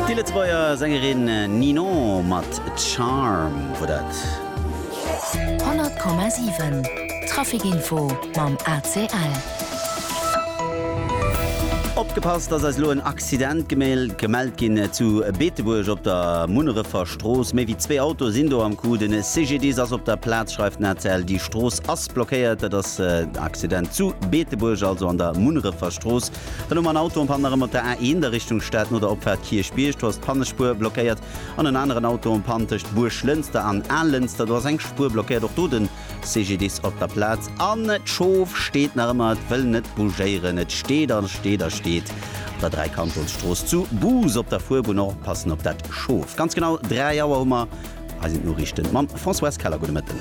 Déi Lëtzebuerger Sängerin Ninon mat Charm wor dat. 100,7 Traficinfo mam ACL. Opgepasst, dass eis lo en Accident gemellt ginn zu Beetebuerg op der Munnerefer Strooss. Méi wéi zwee Autoe sinn do am Coup. Den CGDIS ass op der Plaz, schreift den ACL. Déi Strooss ass blockéiert. Dat ass den Accident zu Beetebuerg, also an der Munnerefer Strooss. Dann hu mer en Auto um Panne erëm op der A1 a Richtung Stad no der Opfaart Kierchbierg. Do ass d'Pannespuer blockéiert. An en aneren Auto um Pann tëscht Buerglënster an Allënster. Do ass eng Spuer blockéiert. Och do de CGDIS op der Plaz. An d'Schof steet nach ëmmer, et wëll net bougéieren. Et steet a steet a steet op der Dräikantonsstrooss zu Bous op der Fuerbunn. Oppassen op dat Schof. Ganz genau 3 Auer hu mer Hei sinn d'Noriichten mam Françoise Keller. Gudde Mëtten.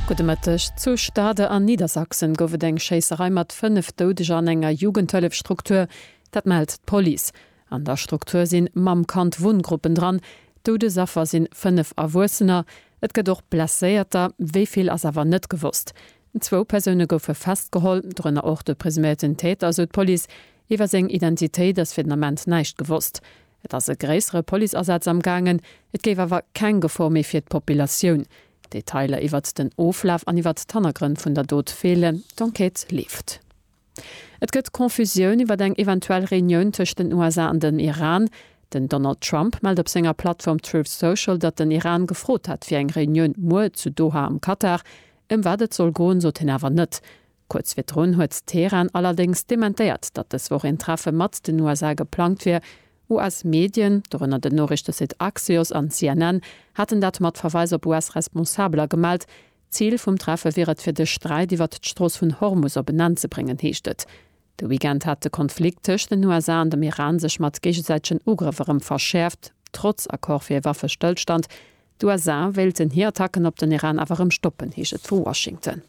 Gudde Mëtteg. Zu Stade an Niedersachsen gouf et eng Schéisserei mat 5 Doudeger an enger Jugendhëllefstruktur. Dat mellt d'Police. An der Struktur si Mamm Kand Wunngruppen dran. Doudesaffer si 5 Erwuessener. Et gëtt och Blesséierter, wéi vill ass awer net gewosst. Zwou Persoune goufe festgeholl, dorënner och de presuméierten Täter, sou d'Police. Iwwer seng Identitéit ass fir den Ament näischt gewosst. Et ass e gréissere Policeasaz am gaangen, et géif awer keng Gefor méi fir d'Populatioun. Detailer iwwert den Oflaf an iwwert d'Hannergrënn vun der Dot feelen, d'Enquête leeft. Et gëtt Confusioun iwwert eng eventuell Reunioun tëscht den USA an den Iran. Den Donald Trump mellt op senger Plattform Truth Social, datt den Iran gefrot hätt fir eng Reunioun muer zu Doha am Katar. Ëm wat et soll goen, sot hien awer net. Kuerz virdrun huet Teheran allerdéngs dementéiert, datt dës Woch een Treffe mat den USA geplangt wier. US-Medien, dorënner den Noriichtesite Axios an CNN, haten dat mat Verweis op US-Responsabeler gemellt. Zil vum Treffe wier et, fir de Sträit iwwert d'Strooss vun Hormus op en Enn ze bréngen, heescht et. De Weekend hat de Konflikt tëscht den USA an dem Iran sech mat géigesäitegen Ugrëff erëm verschäerft. Trotz Accord fir ee Waffestëllstand D'USA wéilten hir Attacken op den Iran awer erëm stoppen, heescht et vu Washington.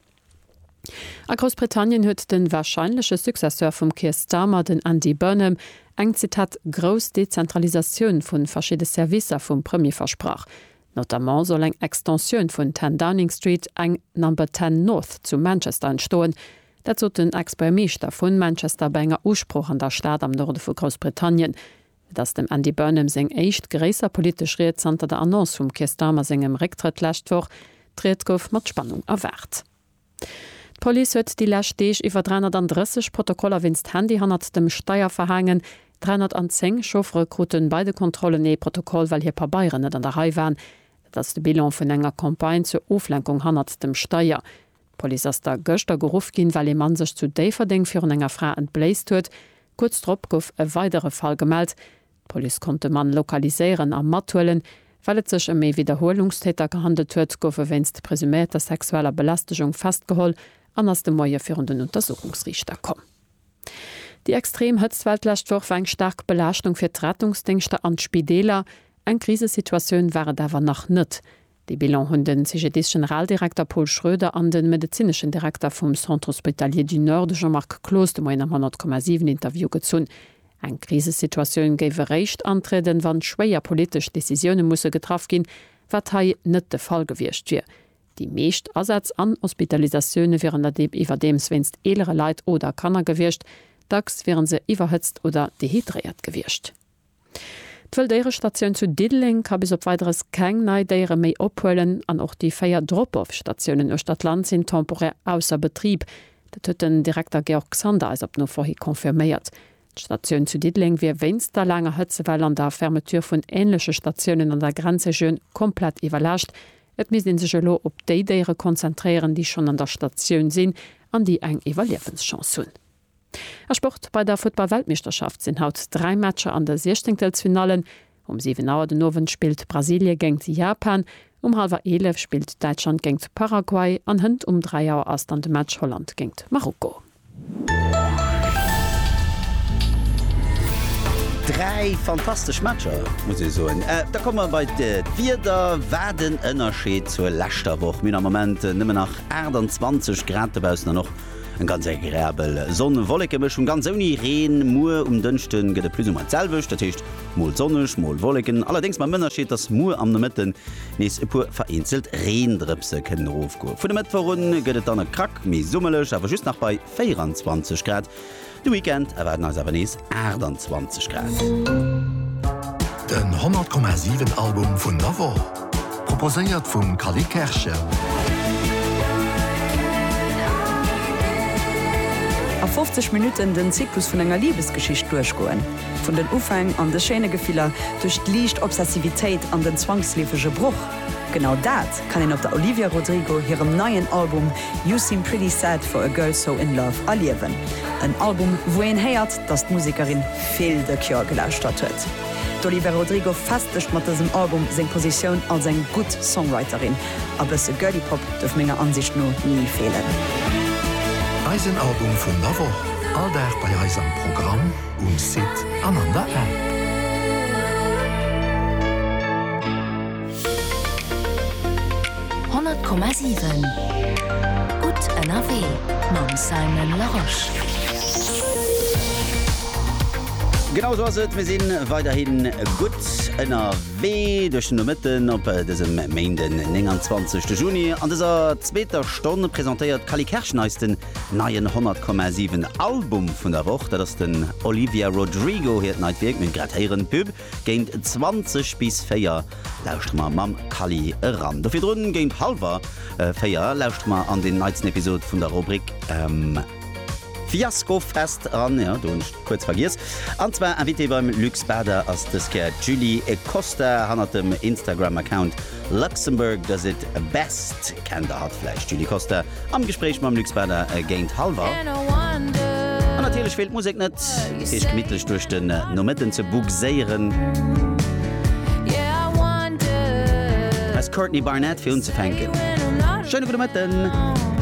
A Groussbritannien huet de warscheinleche Successeur vum Keir Starmer, den Andy Burnham, eng, Zitat, grouss Dezentralisatioun vu verschidde Servicer vum Premier versprach. Notamment soll eng Extensioun vun 10 Downing Street, eng Number Ten North zu Manchester entstoen. Dat sot den Ex-Buergermeeschter vu Manchester bei enger Usprooch an der Stad am Norde vu Groussbritannien. Et ass dem Andy Burnham seng éischt gréisser politesch Ried zanter der Annonce vum Keir Starmer sengem Récktrëtt lescht Woch. D'Ried gouf mat Spannung erwaart. D'Police huet déi lescht Deeg iwwer 330 Protokoller wéinst Handy hannert dem Steier verhaangen. 310 Chauffere krute bei de Kontrollen ee Protokoll, well hir Pabeieren net an der Rei waren. Dat ass de Bilan vun enger Campagne zur Oflenkung hannert dem Steier. D'Police ass da gëschter geruff ginn, well ee Mann sech zu Déifferdeng virun enger Fra entbléist huet. Kuerz drop gouf e weidere Fall gemellt. D'Police konnt de Mann lokaliséieren a mathuelen. Well et sech ëm ee Widderhuelungstäter gehandelt huet, gouf e wéinst presüméierter sexueller Belästegung festgeholl an ass de Moie virun den Untersuchungsriichter komm. Déi extrem Hëtztwell d'lescht Woch war eng staark Belaaschtung fir d'Rettungsdéngschter an d'Spideeler. Eng Krisesituatioun war et awer nach net. Dee Bilan hunn den CGDIS-Generaldirekter Paul Schroeder an den medezineschen Direkter vum Centre Hospitalier du Nord, de Jean-Marc Cloos, de Moien am 10,7 Interview gezunn. Eng Krisesituatioun géif eréischt antrieden, wann schwéier politesch Decisioune musse getraff ginn, wat hei net de Fall gewiescht wier. Déi meescht Asätz an Hospitalisatioune wieren der Deem iwwerdeems wéinst eelere Leit oder Kanner gewiescht. Dacks wiere se iwwerhëtzt oder dehydréiert gewiescht. D'Wëlldéierestatioun zu Diddeleng ka bis op Weideres keng nei Déiere méi ophuelen an och déi véier Drop-off-Statiounen uechter d'Land sinn temporär ausser Betrib. Dat huet den Direkter Georg Sander eis op Nofro hi confirméiert. D'Statioun zu Diddeleng wier wéinst der laanger Hëtzewell an der Fermeture vun änleche Statiounen an der Grenzregioun komplett iwwerlaascht. Et misst ee sech elo op déi Déiere konzentréieren, déi schonn an der Statioun sinn an déi eng Iwwerliewenschance hunn. A Sport, Bei der Futtball-Weltmeeschterschaft sinn haut dräi Matcher an de Siechzéngtelsfinallen. Um 7 Auer den Owend spillt Brasilie géingt Japan, um hallwer 11 spillt Däitschland géingt Paraguay an hënt um 3 Auer ass dann de Match Holland géingt Marokko. Dräi fantastesch Matcher, muss ee soen. Da komme mer bei d'Wieder. Wat en Ënnerscheed zur leschter Woch. Mir hunn am Moment nëmmen nach 28 Grad dobaussen an och. Eng ganz agreabel Sonn-Wolleken-Mëschung, ganz ouni Reen. Muer um Dënschde gëtt et plus ou moins d'selwecht, dat heescht mol sonneg, mol Wolleken, allerdéngs mam Ënnerscheed, dass muer am Nomëtten nees e puer vereenzelt Reendrëpse kënnen erofgoen. Vun e Mëttwoch un gëtt et dann e Krack méi summerlech, awer just nach bei 24 Grad. De Weekend erwaarden eis awer nees 28 Grad. Den 100,7 Album vun der Woch, proposéiert vum Cally Kerschen. A 50 Minutten den Zyklus vun enger Libesgeschicht duerchgoen. Vun den Ufäng an de schéine Gefiller, duerch d'liicht Obsessivitéit an den zwangsleefege Broch. Genau dat kann een op der Olivia Rodrigo hirem neien Album You Seem Pretty Sad For A Girl So In Love erliewen. En Album, wou een héiert, datt d'Musekerin vill The Cure gelauschtert huet. D'Olivia Rodrigo festegt mat dësem Album seng Positioun als eng gutt Songwriterin. A bësse Girly Pop duerf menger Ansicht no ni feelen. Eisen Album vun der Woch, all Dag bei eis am Programm. um Site an an der App. Honnert Komma siwen Gutt ënnerwee mam Simon Larosche. Genau esou ass et, mir si weiderhin gutt ënnerwee duerch den Nomëtten op dësem Méinden, 29 de Juni. An dëser zweeter Stonn presentéiert d'Cally Kersch neis den Neien 100,7 Album vun der Woch, dat ass den Olivia Rodrigo hiert neit Wierk. Mir grad héieren d'Pub géint 20 bis 4 lauschteren mer mam Kally eran. Do virdrun géint halwer 4 lauschteren mer an den neitsten Episod vun der Rubrik Fiasko Fest eran, jo do hunn ech kuerz vergiess. An zwar Invitée beim Luc Spader ass dës Kéier d'Julie Costa hannert dem Instagram Account Luxembourg does it best, kennt der hatt vläicht? Julie Costa am Gespréich mam Luc Spader géint hallwer. An natierlech feelt d'Musek net, fir iech gemittlech duerch den Nomëtten ze bugséieren. Hei ass d'Courtney Barnett fir unzefänken. Schéine gudde Mëtten!